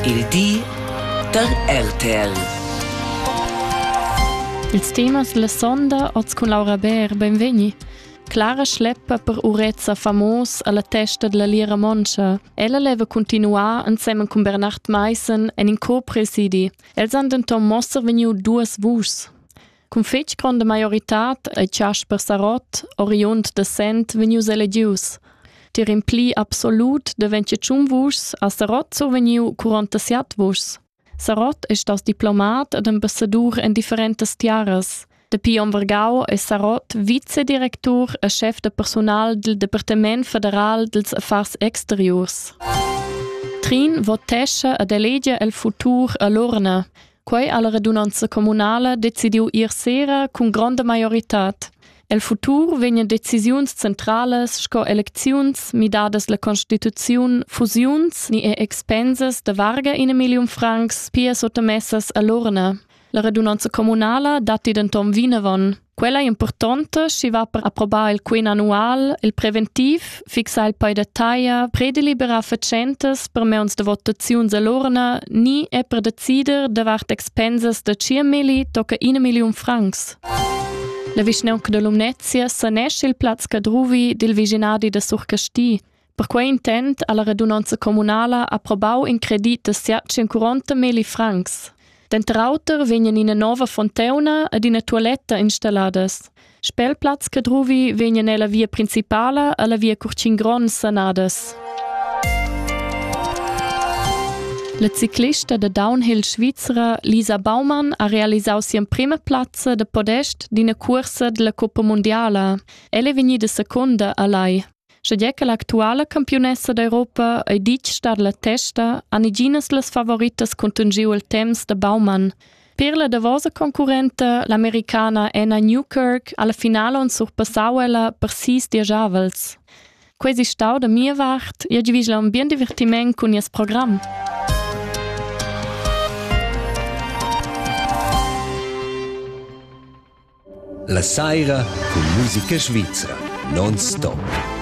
Il di da RTL. Ils temas la sonda oz cun Laura Bär, benvegni. Clara schleppa per urezza famos alla testa della Lira Moncha. Ella leva continuar insieme con Bernard Meissen en in copresiedi. Els han denton mossa vegniu duas vuschs. Cun fetg gronda maioritad ei Chasper Sarott, oriund da Sent, vegnius elegius. Tier in pli absolut deventje tschun vuschs ha Sarott survegniu 47 vuschs. Sarott è stas diplomat ed ambassadur en differentas tiaras. Dapi onn Vargau è Sarott vicedirectur e chef da personal del Departement federal dels affars exteriors. Trin votesce ed elegia el futur a l'urna. Quei ha la radunanza communala decidiu ir sera cun gronda maioritad. El futur vegnan decisiuns centralas sco elecziuns, midadas la constituziun, fusiuns ni er expensas da varga in million francs pia sottamessas a l'urna. La radunanza communala datti denton vinavon. Quella è importanta, schi va per approbar il quin annual, il preventiv, fixar il poi da taglia, prederliberar fatschentas per meuns de votaziuns all'orna, ni è per decider davart expensas da 5.000 tocca 1 million francs. La vischnaunca de Lumnezia sanesce il plaz cadruvi dil viginadi da Surcasti. Per quei intent ha la radunonza communala approbau in credit da siat 140 meli francs. Denter auter vegnan ina nova fonteuna ed ina tualetta installadas. Spelplatz Cadruvi vegnan ella via principala alla via Curcin Gron sanadas. La ciclista da downhill svizra Lisa Baumann ha realisau sia prima plazza da podest d'ina cursa della Coppa Mondiala. Ella è vegnida secunda a Lai. Sche che l'actuala campiunessa d'Europa ei ditg star la testa, han iginas las favoritas contungiu il temps da Baumann. Per la davosa concurrenta, l'americana Anna Newkirk, alla finale on surpassau ella per sis diagiavels. Quei si stau da mia vart, io gi vigila un bien divertiment cun nies program. La saira cun musica svizra non stop.